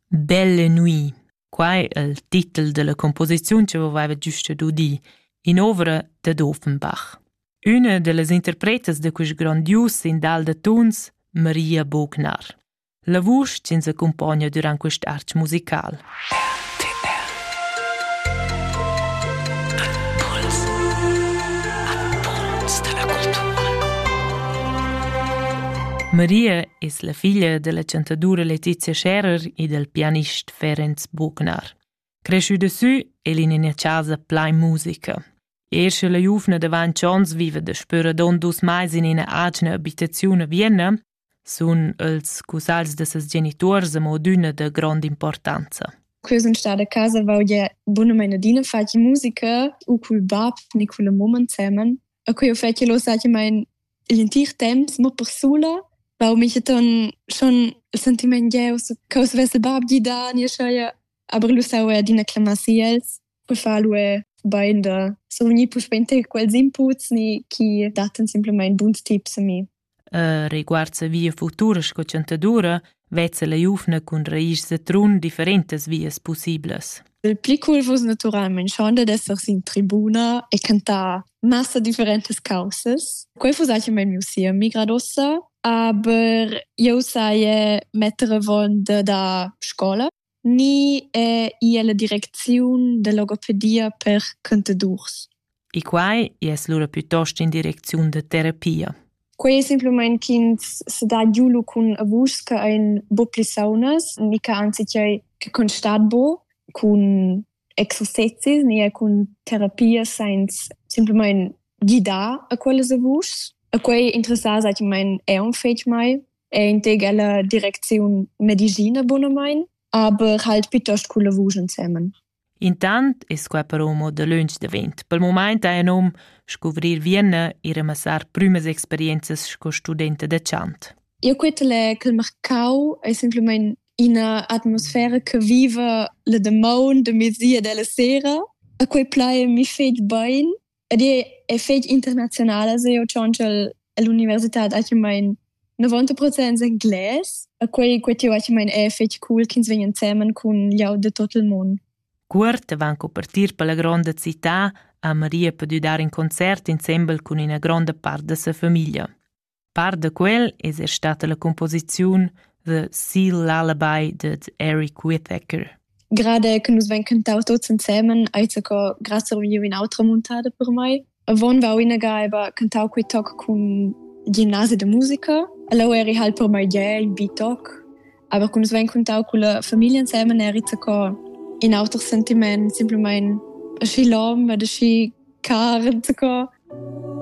Belle nuit, quai è il titel della composiziun che aveva giusto d'udir, in ovra dad Offenbach. Una dellas interpretas de quest grandius sindal de tuns, Maria Bognar. La vusch ci accompagna durant quest arch musical. RTL Impuls Impuls da la cultura Maria es la figlia della chantadoura Letizia Scherer e del pianist Ferenc Buchnar. Cresciuda sü el in ina casa plain musica. Ersche la giuvna davanti ons viva da spüra don dus mais in ina atgna abitaziun a Vienna sun els scusals da ses genituors amo adüna da grond'importanza. Quei sun stada a casa vaugia bunamain adina faci musica u cul bab ni cun la mamma insemen. E quei ho fet che lo sachi main l'entir temps, mo per sula. Vau micheton schon il sentiment gieus che us vess il bab gidà nie scheia, aber lu sau er adina clamar si els. Poi fa lu er bain da survegnir puspei ter quels inputs ni chi dattan simplamain buns tips a mi. Reguard sia via futura sco chantadura vezza la giuvna cun raischs da Trun differentas vias pussiblas. Il pli cool vus naturalmein schon dad esser sin tribuna e cantar massa differentas causas. Quei vus eis mein miu siemi gradossa, aber eu sai metter avon da scola ni è i ella direcziun da logopedia per contadors. E quai es lura piuttost in direcziun da terapia. Quei è semplicemente ch'ins se dà giulo cun a vus che ein bo pli saunas, mica anzi che che constat bo cun exercizis ni cun terapia senza semplicemente guidar a quellas a vus. A quei interessar, sag ich mein, è un fetg mai è in teg ella direcziun medicina bunamain, aber halt piuttost cun lavur ensemen. Intant es quai però mo dalöntsch davent. Pel mumaint ha nom scuvrir Vienna e ramassar prümas experienzas sco studenta da chant. Io quetele che il Marcau è semplicemente una atmosfera che vive le demande de mesi e della sera. A quei plai mi fetg bein Ed è fetg internazionala se io tschonchel all'università achimain 90% engles, a quei quei tiu achimain è fetg cool ch'ins vegn ensemen cun gl'aut de tot il mund. Cuort avant co partir per la gronda città ha Maria pudü dar in concert insembel cun ina gronda part da sa famiglia. Part da quel es er stata la cumposiziun The Sea Lullaby dad Eric Whitaker. Gerade che nus vein cantau tuts ensemen, ei zaco grazie viu in autra muntada per mei. Avon va uinaga eba cantau quei toc cun gimnasi de musica. Ella eri halt per mai ge in bitoc. Aber kun svein contau con la famiglia insieme eri zaco in auter sentiment, simpelmente aschi lom, ad aschi car, zaco.